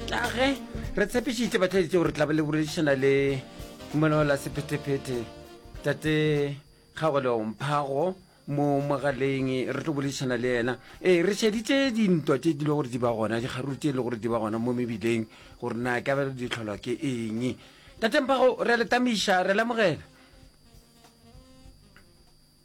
tlage re tshepišitše batlhaeditse gore tlabe le boledišana le monao la sephetephete tate kgagolewomphhago mo mogaleng re tlo boledišana le yena ee re šeditše dintwa tše di le gore di ba gona dikgaruru tše e le gore di ba gona mo mebileng gore na ka belo di tlholwa ke eng tatemphago re letamiša re lemogela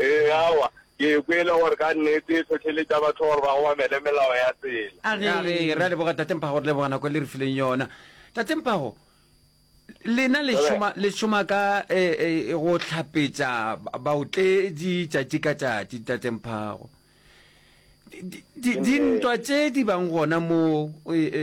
Ee, aowa, ke e kwele gore ka nnete e tlhotlheletša batho gore ba obamele melao ya tsela. A re, Ee, re a leboga Tate Mphago, re leboga nako e le re fileng yona. Tate Mphago, lena le šoma, le šoma ka e, e, go hlapetša ba- baotledi tšatši ka tšatši, Tate Mphago. Di- di- di- Dintwa tše di bang gona mo e, e,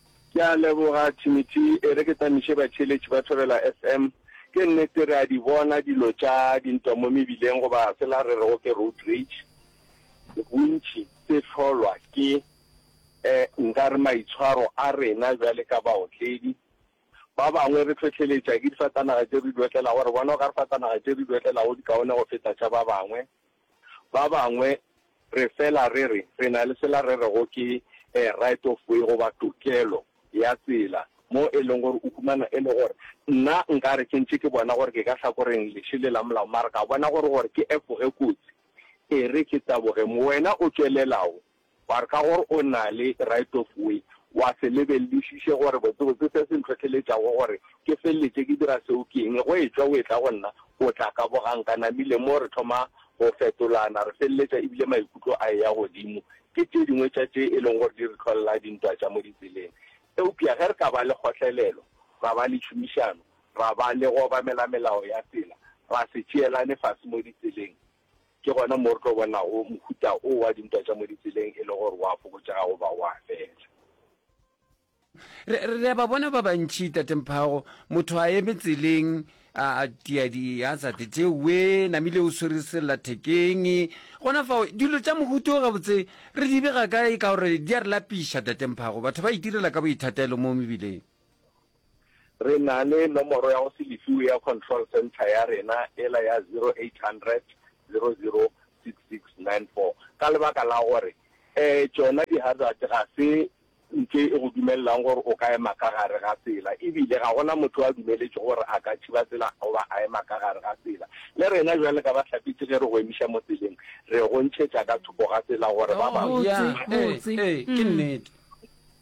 Ke a leboga Thimity, e re ke tamiše batšheletši ba Thobela FM. Ke nnete re a di bona dilo tša dintwa mo mebileng goba sela re rego ke road rage, bontši se hlolwa ke eh nkare maitshwaro a rena bjale ka baotledi. Ba bangwe re hlohleletša ke difatanaga tše re di otlelago, re bona okare fatanaga tše re di otlelago di kaone go feta tša ba bangwe. Ba bangwe re fela re re re na le sela re rego ke a right of way goba tokelo ya tsela, mo e leng gore o humana e le gore nna nka re ke ntše ke bona gore ke ka hlakoreng leše le la molao mara ka bona gore gore ke efoge kotsi e re ke taboge mo wena o tšwelelago Wa re ka gore o na le right of way, wa se lebelelišiše gore botsebotse se se ntlhohleletšago gore ke feleletše ke dira seo ke eng. Go etšwa o etla go nna, o tla ka boganka. Namile moo re thoma go fetolana, re feleletša e bile maikutlo a eya godimo. Ke tše dingwe tša tše e lego gore di re hlolela dintwa tša mo ditseleng. Eupša ge re ka ba le kgotlelelo, ra ba le tšhomišano, ra ba le go obamela melao ya tsela, ra se tšeelane fase mo ditseleng, Ke gona mo re tlo bonago mohuta o wa dintwa tša mo ditseleng e le gore wa fokotšega goba wa fela. Re, re a ba bona ba bantši, Tate Mphago, motho a eme tseleng, a tia dihazate tšewe, namile o swere sellathekeng, gona fao. Dilo tša mohuto gabotse re di bega kae ka gore di a re lapiša, Tate Mphago? Batho ba itirela ka boithatelo mo mebileng. Re na le nomoro ya go se lefiwe ya control centre ya rena ela ya 0800 00 6694 ka lebaka la gore um tšona di-hazard ga se ntho e go dumelelang gore o ka ema ka gare ga tsela ebile ga gona motho a dumeletšwe gore a ka thiba tsela goba a ema ka gare ga tsela. Le rena bjale ka bahlapetši ge re go emiša mo tseleng re go ntšhetša ka thoko ga tsela gore ba bangwe ba. Botse, botse. Ee, ee, ke nnete.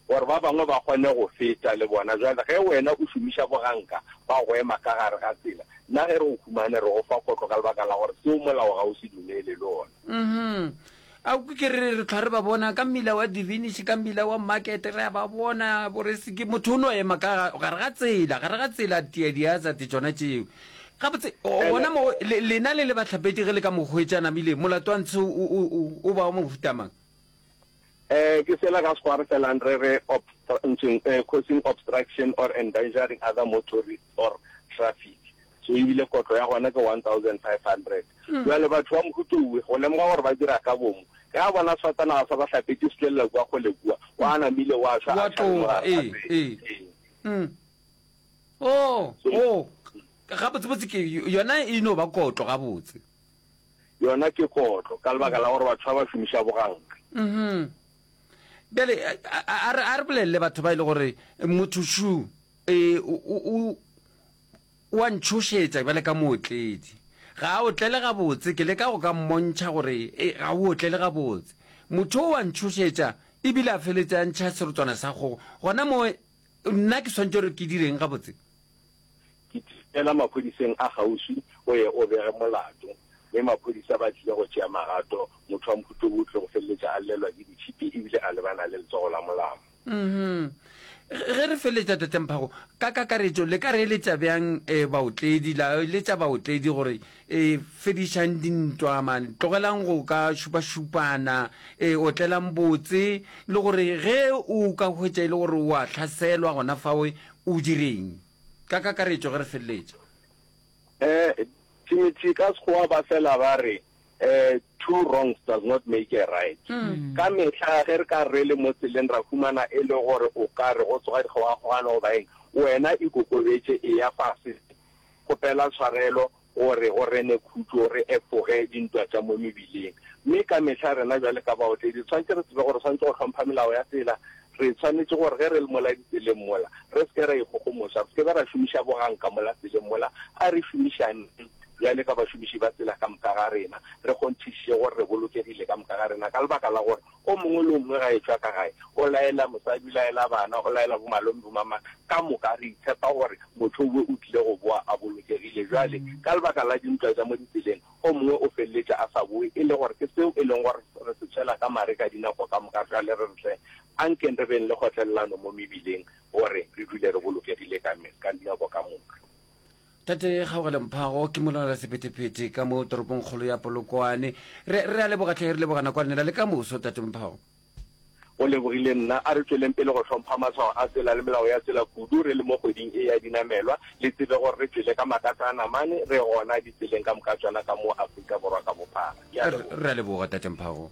Gore ba bangwe ba kgone go feta le bona. Bjale ge wena o šomiša boganka ba go ema ka gare ga tsela, nna ge re go humane re go fa kotlo ka lebaka la gore seo molao ga o se dumele le ona. Uhum. A kwe ke re re hlwa re ba bona ka mmila wa Divinish, ka mmila wa Market, re a ba bona bo re se ke motho o no ema ka gare ga tsela, gare ga tsela tia di hazard tšona tšeo. Gabotse gona mo le, lena le le bahlapetši ge le ka mo hwetša a namile, molato wa ntshe o, o, o, o ba wa mohuta mang? Eh, ke sela ka Sekgowa re selang re re obstrunching, eh, causing obstruction or endangering other motorists or traffic. So ebile kotlo ya gona ke 1500. Jwale batho ba mohuto uwe go lemoga gore ba dira ka bomo ge a bona sefatanaga sa ba hlapetše se tlelela kua kgole kua, o a namile wa šwa Wa a tšhale toga, mogare ga ee, pele. ee. Ee. Mm. Oh, oh. Gabotsebotse ke yona e no ba kotlo gabotse. yona ke kotlo ka lebaka la gore batho ba ba šomiša boganka. Mhm. Bjale a re a re bolelele batho ba ile e gore motho shu e o o wa ntshošetsa bjale ka mootledi ga a otlele gabotse ke le ka go ka mmontšha gore e ga o otlele gabotse motho o wa ntshošetsa ebile a feletse a ntšha serotswana sa kgogo gona mo Nna ke swanetše gore ke direng gabotse? Ke tipela maphodiseng a kgauswi o ye o bege molato, mme maphodisa ba tlile go tšea magato. Motho wa Mphutlobu o tlile go feleletša a llelwa ke ditšhipi e bile a lebana le letsogo la molamo. Mmhmm. Ge re feleletša, Tate Mphago, ka kakaretšo le ka re eletša bjang baotledi, la eletša baotledi gore E, fedišang dintwa, man. Tlogelang go ka šupašupana. E, otlelang botse. Le gore ge o ka hwetša e le gore o a hlaselwa gona fawe, o direng? Ka kakaretšo, ge re feleletša. E, Timothy, ka Sekgowa ba fela ba re, e, Two wrongs does not make a right. Ka mehla ge re ka re le mo tseleng ra humana e le gore o ka re go tsoga dikgogakgogano goba eng, wena ikokobetše, eya fase. Kgopela tshwarelo gore go rene khutšo, re efoge dintwa tša mo mebileng. Mme ka mehla rena bjale ka baotledi re swanetše re tsebe gore swanetše go hlompha melao ya tsela. Re swanetše gore ge re le mola ditseleng mola, re se ke ra ikgogomoša, re se ke be ra šomiša boganka mola tseleng mola. A re šomišaneng bjale ka bašomiši ba tsela ka moka ga rena, re kgonthišiše gore re bolokegile ka moka ga rena ka lebaka la gore O mongwe le o mongwe ga etšwa ka gae, o laela mosadi, o laela bana, o laela bomalome, bomamang, ka moka re itshepa gore motho wo o tlile go boa a bolokegile. Bjale, ka lebaka la dintwa tša mo ditseleng, o mongwe o feleletše a sa boe, e le gore ke seo e leng gore re se tšhela ka mare ka dinako ka moka. Bjale re re, Hle, a nkeng re beng le kgotlelelano mo mebileng, gore re dule re bolokegile ka dinako ka moka. Tate Kgaogele Mphago ke molwanela sephethephethe ka mo toropongkgolo ya Polokwane. Re, re a leboga tlhe, re leboga nakwane la le ka moso, Tate Mphago. O lebogile nna. A re tšweleng pele go hlompha matshwao a tsela le melao ya tsela kudu re le mo kgweding e ya dinamelwa. Le tsebe gore re tšwele ka makatsa a namane, re gona ditseleng ka moka tšona ka mo Afrika Borwa ka bophara. Ke a leboga. Re a leboga, Tate Mphago.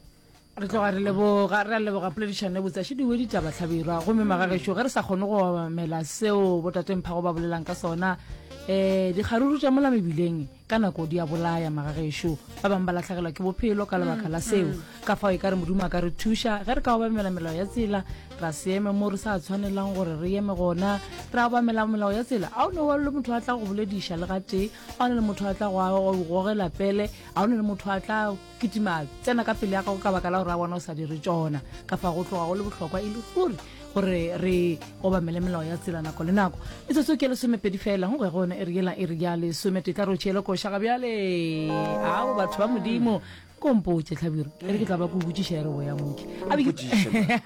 re tloga re leboga re a leboga poledišano e botsa šediwe ditaba tlhabirwa gomme magagešo ge re sa kgone go obamela seo botatengphago ba bolelang ka sona um dikgaruru tša mola mebileng ka nako di a bolaya magagešo ba bangwe ba latlhegelwa ke bophelo ka lebaka la seo ka fao e ka re modimo a ka re thuša ge re ka obamela melao ya tsela ra se eme mo re sa tshwanelang gore re eme gona ra obamela melao ya tsela a o ne wa le motho a tla go bolediša le gatee a o ne le motho a tla go gogela pele a o ne le motho a tla kitima tsena ka pele ya gago ka baka la gore a bona o sa dire tsona ka fa go tloga go le bohlokwa e le ruri gore re obamele melao ya tsela nako le nako e tsotso ke lesomepedi fela go go yone e re yela e re ya lesome tetla re o tšhele košaga bjale ao batho ba modimo kompotše tlhabiro e re ke tla ba ko botsiša e re boya moke a be ke-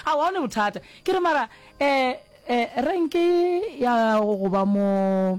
a wa ne bothata ke re mara um um renke ya go ba mo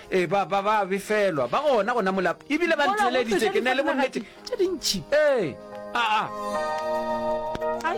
Ee, ba, ba, ba a befelwa. Ba gona go namola, e bile ba Mola go ntheeleditše feta ke na le difatanaga bonnete. tše dintši. Ee. A, a. Ai.